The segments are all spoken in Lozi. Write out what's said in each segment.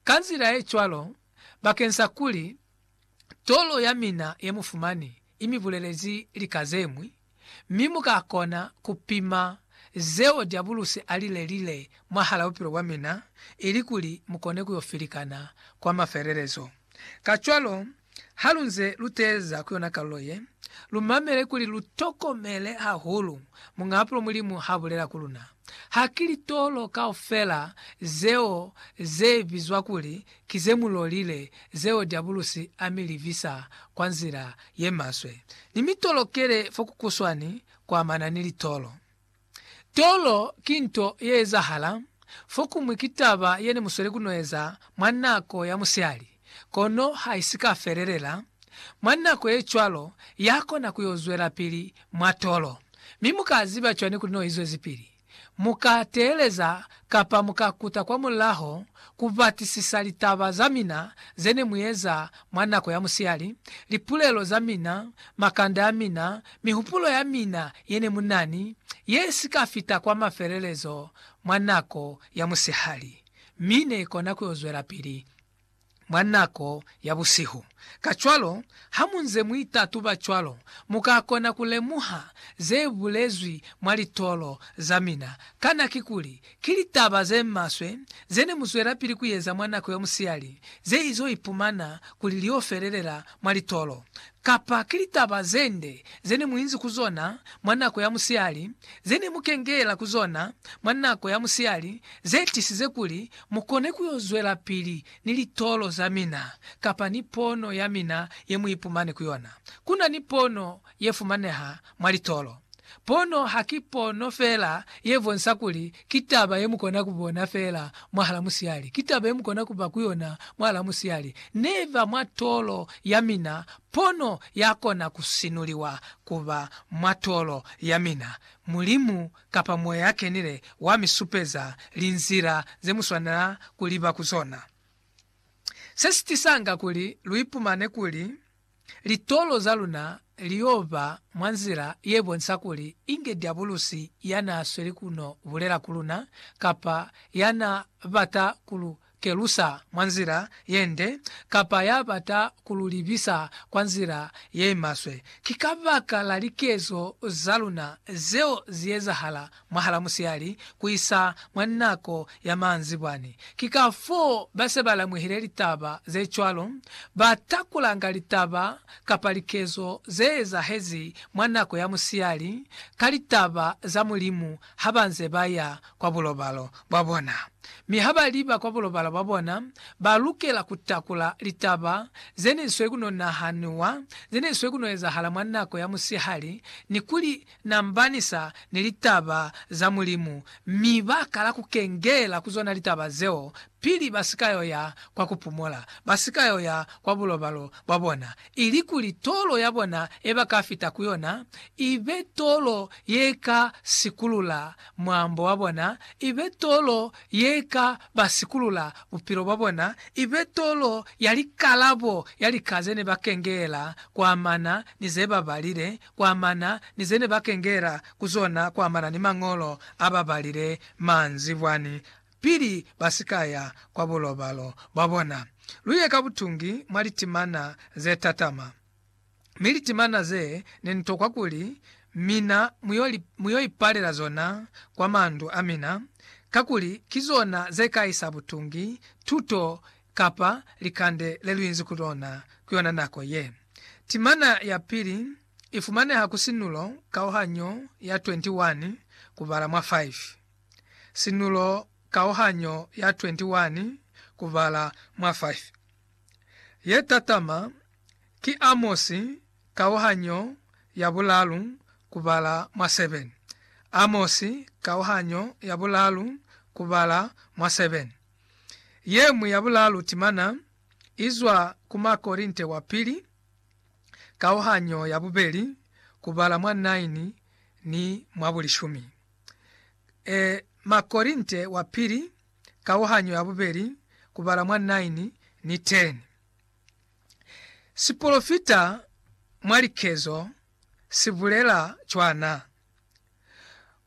Ka nzila ye cwalo, bakeng sa kuli tolo ya mina ye mu fumani i mi bulelezi lika ze ñwi, mi mu ka kona ku pima zeo Diabulusi a li lelile mwahal'a bupilo bwa mina ilikuli mu kone ku yo filikana kwa mafelelezo. Kacwalo, halunze luteeza ku yona kalulo ye, lumamele kuli lutokomele hahulu muñaapulo Mulimu haabulela ku luna. Ha ki litolo kaufela zeo zebizwa kuli ki zemulolile zeo Diabulusi amilivisa kwa nzila yemaswe. Nimitolokele fokukuswani kuamana ni litolo. Tolo ki nto ye ezahala fokumwi ki taba ye ne mu sweli ku no eza mwa nako ya musihali, kono ha i si ka felelela. Mwa nako ye cwalo, ya kona ku yo zwelapili mwa tolo. Mi mu ka ziba cwani kuli no i zwezipili? Mu ka teeleza Kapa mu ka kuta kwa mulaho ku batisisa litaba za mina ze ne mu eza mwa nako ya musihali, lipulelo za mina, makanda a mina, mihupulo ya mina ye ne mu na ni ye si ka fita kwa mafelelezo mwa nako ya musihali, mi ne i kona ku yo zwelapili. mwa nako ya busihu. Kacwalo, hamunze muitatuba cwalo, mukakona kulemuha zebulezwi mwa litolo zamina. Kana kikuli ki litaba zemaswe zene muzwelapili kuyeza mwa nako ya musiyali zeizo ipumana kuli liofelelela mwa litolo? Kapa ki litaba zende zene muinzi ku zona mwa nako ya musiyali, zene mukengela ku zona mwa nako ya musiyali zetisize kuli Mu kone ku yo zwelapili ni litolo za mina kapa ni pono ya mina ye mu ipumani ku yona. Ku na ni pono ye fumaneha mwa litolo. Pono ha ki pono fela ye bonsa kuli ki taba ye mu kona ku bona fela mwahala musihali, ki taba ye mu kona ku ba ku yona mwahala musihali. Ne ba mwa tolo ya mina, pono ya kona ku sinuliwa ku ba mwa tolo ya mina. Mulimu kapa mo ya kenile wa mi supeza linzila ze mu swanela ku liba ku zona. Se si tisanga kuli lu ipumane kuli litolo za luna li yo ba mwa nzila ye bonisa kuli inge diabulusi ya n'a sweli ku no bulela ku luna kapa ya n'a bata ku lu kelusa mwa nzila ye nde kapa ya bata ku lu libisa kwa nzila ye maswe, ki kabaka la likezo za luna zeo zi ezahala mwahala musihali ku isa mwa nako ya maanzibwani. Ki kafoo ba se ba lamwehile litaba ze cwalo, ba takulanga litaba kapa likezo ze ezahezi mwa nako ya musihali ka litaba za Mulimu ha ba nze ba ya kwa bulobalo bwa bona. Mi ha ba liba kwa bulobalo bwa bona, ba lukela ku takula litaba ze ne swe ku no nahanuwa, ze ne swe ku no ezahala mwa nako ya musihali, ni ku li nambanisa ni litaba za Mulimu, mi ba kala ku kengela ku zona litaba zeo pili ba si ka yo ya kwa ku pumola, ba si ka yo ya kwa bulobalo bwa bona. ilikuli tolo ya bona ye ba ka fita ku yona i be tolo ye ka sikulula mwaambo wa bona, i be tolo ye ka ba sikulula bupilo bwa bona, i be tolo ya likalabo ya lika ze ne ba kengeela kwamana ni ze ba balile, kwamana ni ze ne ba kengeela ku zona kwamana ni Mañolo a ba balile manzibwani pili ba si ka ya kwa bulobalo bwa bona. Lu ye ka butungi mwa litimana ze tatama, mi litimana ze ne ni tokwa kuli mina mu yo li, mu yo ipalela zona kwa mandu a mina, kakuli ki zona ze ka isa butungi, tuto, kapa likande le lu inzi ku lona ku yona nako ye. Timana ya pili i fumaneha ku sinulo kauhanyo ya 21, ku bala mwa 5. Sinulo kauhanyo ya 21 kubala mwa 5. Ye tatama ki Amosi kauhanyo ya bulalu kubala mwa 7. Amosi kauhanyo ya bulalu kubala mwa 7. Yeñwi ya bulalu timana izwa ku Makorinte wa Pili kauhanyo ya bubeli kubala mwa 9 ni mwa bulishumi. e Makorinte wa Pili kauhanyo ya bubeli kubala mwa 9 ni 10. Sipolofita mwa likezo si bulela cwana.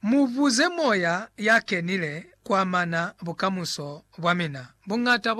Mu buze Moya ya Kenile kuamana bukamuso bwa mina. Buñata bwa